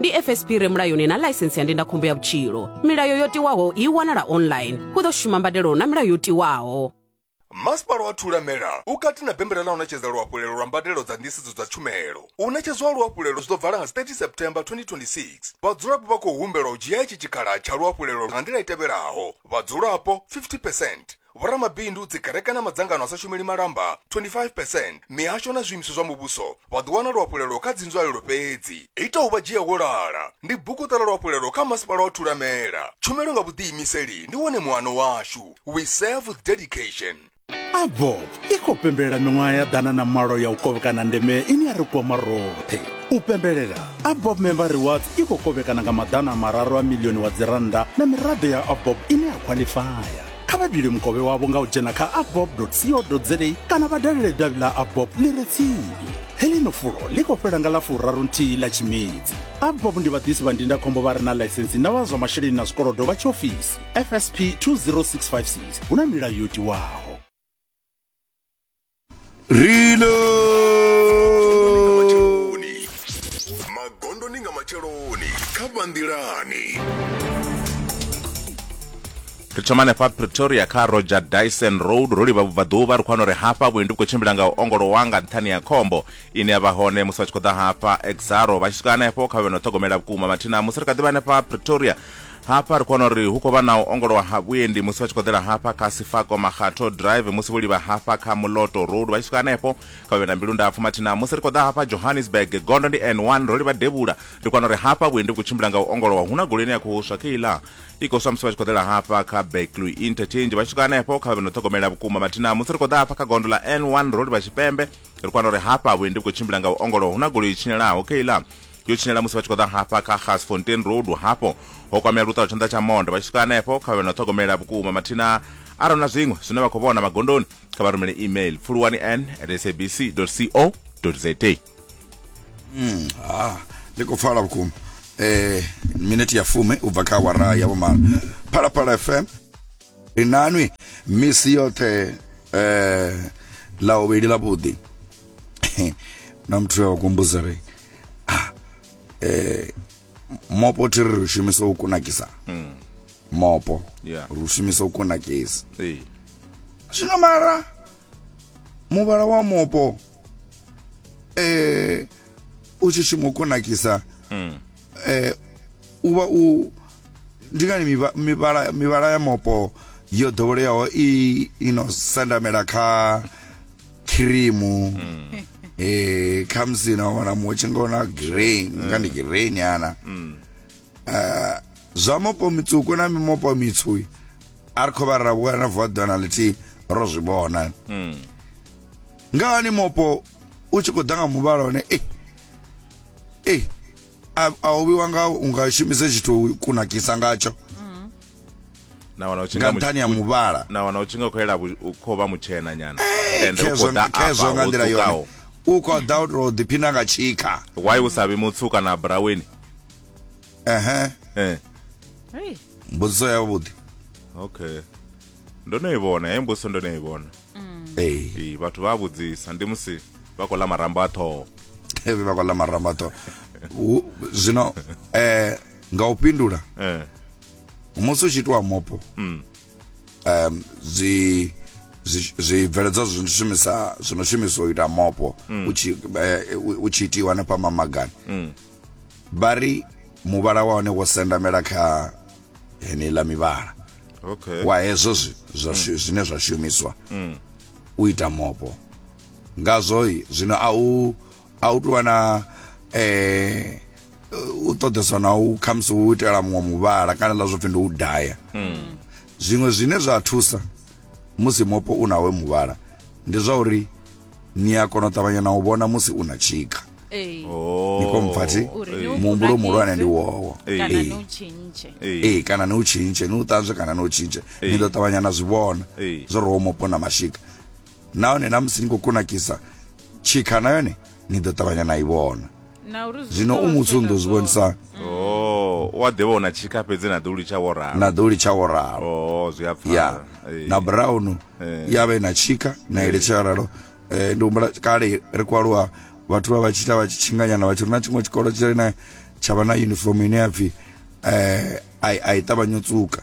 ndi fsp re mulayoni na ḽaisense ya ndindakhombo ya vhutshilo milayo yo tiwaho i wanala online hu ḓo shuma mbadelo na milayo yo tiwaho masipala wa thulamela u kati na bembela ḽa u ṋetshedza luhafhulelo lwa mbadelo dza nḓisedzo dza tshumelo u ṋetshedzwa ha luhafhulelo zwi ḓo vala nga 30 september 2026 vhadzulapo vha khou humbelwa u dzhia itshi tshikhala tsha luhafhulelo nga nḓila i tevhelaho vhadzulapo 50 percent vhoramabindu, dzikereke na madzangano a sa shumeli malamba 25 percent, mihasho na zwiimiswa zwa muvhuso vha ḓo wana luhafhulelo kha dzinzwalelo fhedzi. Ita u vha dzhia wo lala ndi bugu Ṱola Luhafhulelo kha Masipala wa Thulamela. Tshumelo nga vhuḓiimiseli ndi wone muano washu. We serve with dedication. AVOC i khou pembelela miṅwaha ya ḓana na malo ya u kovhekana ndeme ine ya ri kwama roṱhe. U pembelela, AVOC Member Rewards i khou kovhekana nga maḓana a mararu a milioni wa dzirannda na miraḓo ya AVOC ine ya khwaḽifaya. kha vha dule mukovhe wavho nga u dzhena kha abob co za kana vha dalele davhi ḽa abob ḽi re tsini heḽino fulo ḽi khou fhela nga ḽa furaru nthihi ḽa tshimedzi abob ndi vhaḓisi vha ndindakhombo vha re na ḽaisensi na vha zwa masheleni na zwikolodo vha tshiofisi fsp 20656 hu na milayo yo tiwaho Reload! magondoni nga matsheloni kha vhanḓilani ri thoma hanefha pretoria kha roger dyson road ro livha vhubvaḓuvha ri khou wana uri hafha vhuendi vhu khou tshimbila nga u ongolowa nga nṱhani ya khombo ine ya vha hone musi vha tshi khou ḓa hafha exaro vha tshi swika hanefho kha vhe no ṱhogomela vhukuma mathina musi ri kha ḓivha hanefha pretoria Hafha ri kho wana uri hu khou vha na u ongolowa ha vhuendi musi vha tshi khou ḓela hafha kha Sifako Makgatho Drive musi vho livha hafha kha Muloto Road vha tshi swika hanefho kha vhe na mbilu ndapfu mathina musi ri khou ḓa hafha Johannesburg gondo ndi N1 ro livha devhula ri kwana uri hafha vhuendi vhu khou tshimbila nga u ongolowa hu na goloi ine ya khou swa khe iḽa i khou swa musi vha tshi khou ḓela hafha kha Beckley Interchange vha tshi swika hanefho kha vhe no ṱhogomela vhukuma mathina musi ri khou ḓa hafha kha gondo ḽa N1 ro livha Tshipembe ri kwana uri hafha vhuendi vhu khou tshimbila nga u ongolowa hu na goloi i tshinyalaho khe iḽa yo tshinyala musi vha tshi khou ḓa hafha kha gasfontein road hafho ho kwamea luṱa lwa tshanḓa tsha monde vha tshi swika hanefho kha vhe na ṱhogomela vhukuma mathina arali na zwiṅwe zwine vha khou vhona magondoni kha vha rumele email pfuluwani n at sabc co za mm, ah, ndi khou pfala vhukuma eh minute ya fume u bva kha awara ya vhumalo phalaphala fm ri nanwi misi yoṱhe eh la ovheli ḽa vhuḓi na muthu wa kumbuzare ah, eh, mopo thi ri ri shumisa u kunakisa mm. mopo yeah. ri shumisa u kunakisa hey. zwino mara muvhala wa mopo eh, u tshi shuma u kunakisa mm. eh, u vha u ndi ngani mivhala, mivhala ya mopo yo ḓoweleaho i ino sendamela kha khirimu eh khamusi na wana mutshi nga ona grey nga ndi grey nyana Ah, zwa mopo mitswuku na mimopo mitswu i, a ri khou vha ra vhuya na vuwa ḓuvha na ḽithihi ro zwi vhona nga hani mopo u tshi khou ḓa nga muvhala one eh eh a a u vhiwa nga u nga shumise tshithu u kunakisa ngatsho na wana u tshi nga nga mu- nṱhani ha muvhala na wana u tshi nga khou yela vhu- u khou vha mutshena nyana ende u khezwo khou ḓa khezwo afha nga ho nḓila yone tswukaho u khou ḓa u tou ḓiphina nga tshikha why u sa vhi mutsu kana braweni ehe eh Hey. mbudziso yavhuḓi okay ndo no i vhona he mbuso ndo no i vhona ee Ee, vhathu vha a vhudzisa ndi musi vha khou ḽa marambo a ṱhoho evi vha khou ḽa marambo aṱho zwino eh, nga u fhindula Eh, musi u tshi itiwa mopo um, zwi zwi- zwibveledzwa zwi no shumisa zwi no shumiswa u ita mopo u tshi eh, u- u tshi itiwa hanefha mamagani vha ri muvhala wa hone wo sendamela kha heneiḽa mivhala okay wa hezwo zwi- zwa shu- zwine zwa shumiswa u ita mopo ngazwo i, zwino a u a u tuvha na eh u ṱoḓeswa na u khamusi u itela muṅwe muvhala kana ḽa zwo pfi ndi u daya zwiṅwe zwine zwa thusa musi mopo u nawe muvhala ndi zwa uri ni a kona u ṱavhanya na u vhona musi u na tshika Ee. Oh. ni khompfa thi Uri ni u muhumbulo muhulwane kunakise. ndi wowo Ee. kana Ee. ni u tshintshe Ee. ee kana ni u tshintshe ni u ṱanzwe kana ni u tshintshe Ee. ni ḓo ṱavhanya na zwi vhona Ee. zwo ri wo mopo na mashika nahone na musi ni khou kunakisa tshikha na yone ni ḓo ṱavhanya na i vhona zwino u muthu ndo zwi vhonisani oh, wa ḓivha una tshika fhedzi na ḓuli tsha woralo na ḓuli tsha woralo oh, zwi a pfala ya eh. na brown eh. ya vha na tshika na eh. ile tsha ralo eh, ndi humbula kale ri kwaluwa vhathu vha vha tshi ita vha tshi tshinganyana vha tshi ri na tshiṅwe tshikolo tshi na tsha vha na uniform ine ya pfhi eh, a i ṱavhanye u tsuka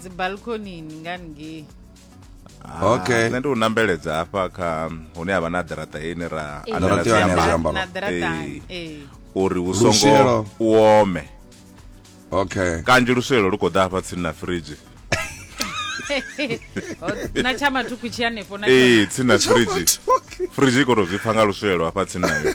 dzibalkonini nga ngei Ah, okay nṋe ndi u nambeledza hafha kha hune havha na ḓaraṱa ine ra eh. anela zwiambalo eh. eh. uri hu songo u ome okay kanzhi luswelo lu khou ḓa hafha tsini na fridge na tsha mathuku tshi hanefho na ee tsini na fridge fridge i khou tou zwi pfa nga luswelo hafha tsini nayo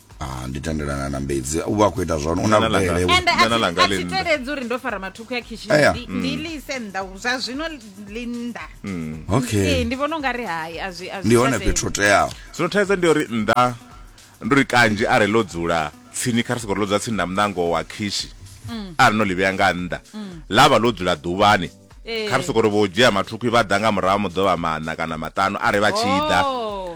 Ah, ndi tendelana na mbedzi u vha a khou ita zwone u na Dzana ḽanga. vhudele we- ende Dzana ḽanga a ḽi thi nnḓa. teledzi uri ndo fara mathukhu ya khishini Aya. ndi- ndi ḽi ise nnḓa u- zwa zwino ḽi nnḓa ee okay ndi vhona u nga ri hai a zwi a zwi ndi hone tsha tenda. fhethu ho teaho zwino thaidzo ndi uri nnḓa ndi uri kanzhi are ḽo dzula tsini kha ri sokori ḽo dzula tsini na muṋango wa khishi are no ḽi vhea nga nnḓa ḽa vha ḽo dzula ḓuvhani Ee. kha ri sokori vho dzhia mathukhu vha ḓa nga murahu ha muḓovha maṋa kana maṱanu are vha tshi ḓa Oh.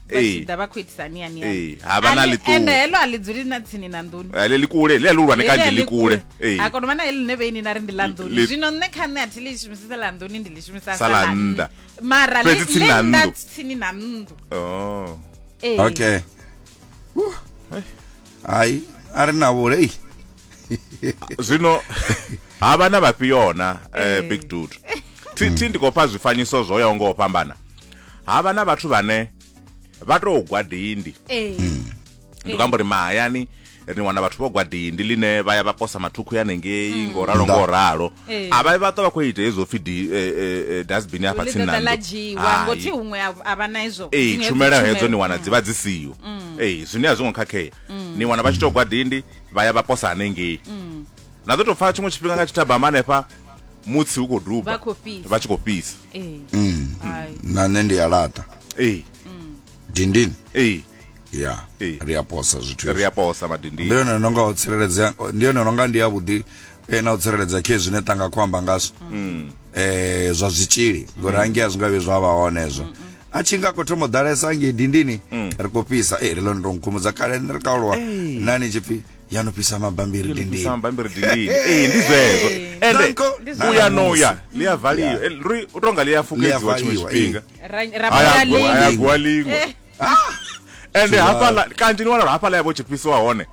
vha Ee. tshi ḓa vha khou itisa ani ani Ee, ha vha na ḽiṱuwa. ende heḽo a ḽi dzuli na tsini na nḓuni Eh, ḽe ḽikule ḽe ḽihulwane kanzhi Heḽi a ḽikule Ee. a kono vha na heḽine vheini na ri ndi ḽa nḓuni Ḽi- zwino nṋe kha nṋe a thi ḽi shumisisa ḽa nḓuni ndi ḽi shumisa Sa ḽa nnḓa. mara ḽi- Fhedzi tsini ḽi na nnḓa nnḓu. tsini na nnḓu Oh. Ee. okay hai a ri na vhulei zwino ha vha na vhafhio na eh, eh. big dude thi thi ndi khou fha zwifanyiso zwo yaho nga u fhambana ha vha na vhathu vhane vha tou gwa dindi eh. hmm. ndi kho amba uri mahayani ri wana vhathu vho gwa dindi line vha ya vha posa mathukhu ya nengei hmm. ngo ralo ngo ralo eh. a vha vha to vha kho ita hezwo pfi di eh, eh, dustbin hafha tsini na ndo ngothi huṅwe a vha na hezwo eh tshumela hedzo ni wana dzi vha dzi siyo hmm. eh zwine a zwi ngo khakhea hmm. ni wana vha tshi to gwa dindi vha ya vha posa hanengei mm. na ḓo tou pfa tshiṅwe tshifhinga nga tshithabama hanefha mutsi u khou duba vha tshi khou fhisa eh. mm. na nṋe ndi a laṱa ee eh. mm. dindini ee eh. ya ri a posa zwithu ri a posa madindini ndi yone no nga o tsireledzea ndi yone no nga ndi yavhuḓi e na u tsireledza khe zwine tanga khou amba ngazwo um zwa zwitzhili ngori mm. hangei a zwi nga vhi zwa vha hone hezwo mm, mm. a tshi nga khou thoma u ḓalesa hangei dindini ri khou fhisa e ri lone to nkhumudza kale ni ri kaulwa nani tshi pfi ya no fhisa mabambiri dindini ee ndi zwezwo ende u ya no ya ḽi a valiwa ri u tonga ḽi a fukedziwa tshiṅwe tshifhinga ayagwa liṅwe ende hafhaḽa kanzhi ni wana uri hafhaḽa ya vho tshi fhisiwa hone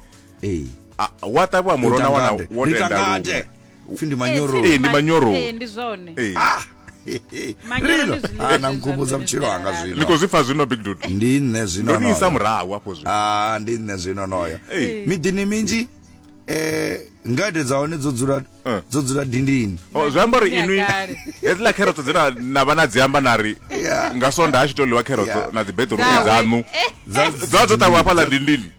ee Ah, wa ṱavhiwa muroho na wana wo tenda nitangate luṅwe. pfi ndi manyoro Eh, ndi manyoro. Eh, ndi zwone Eh, Manyoro rino ndi zwiḽiwa ana zwe nkhumbudza zwa vhutshilo ḓi hanga ni zwino khou zwi pfa zwino big dude ndi nṋe zwino ndo ni isa onoyo. murahu afho zwino Ah, ndi nṋe zwino onoyo Eh. miḓini minzhi eh ngade dza hone dzo dzula Eh. dzo dzula dindini Oh, zwi amba uri Ya inwi kale. hedziḽa kherotso dze na- na vha na dzi amba na ri Yeah. nga sonda a tshi to ḽiwa kherotso Yeah. na dzibeṱiruṱi Dzawe. dzaṋu Dza- dza dzo ṱavhiwa hafhaḽa dindini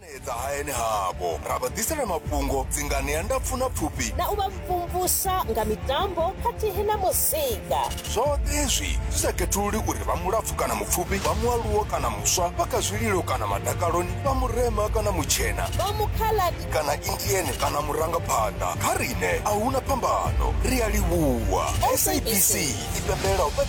ṱanganedza hayani havho ra vha ḓisela mafhungo dzinganea ndapfu na pfufhi na u vha mvumvusa nga mitambo khathihi na muzika zwoṱhe hezwi zwi sa khethululi uri vha mulapfu kana mupfufhi vha mualuwo kana muswa vha kha zwililo kana madakaloni vha murema kana mutshena vha mukhaladi kana indiene kana murangaphanḓa kha riṋe a huna phambano ri a livhuwa sabc i pembela u fhedza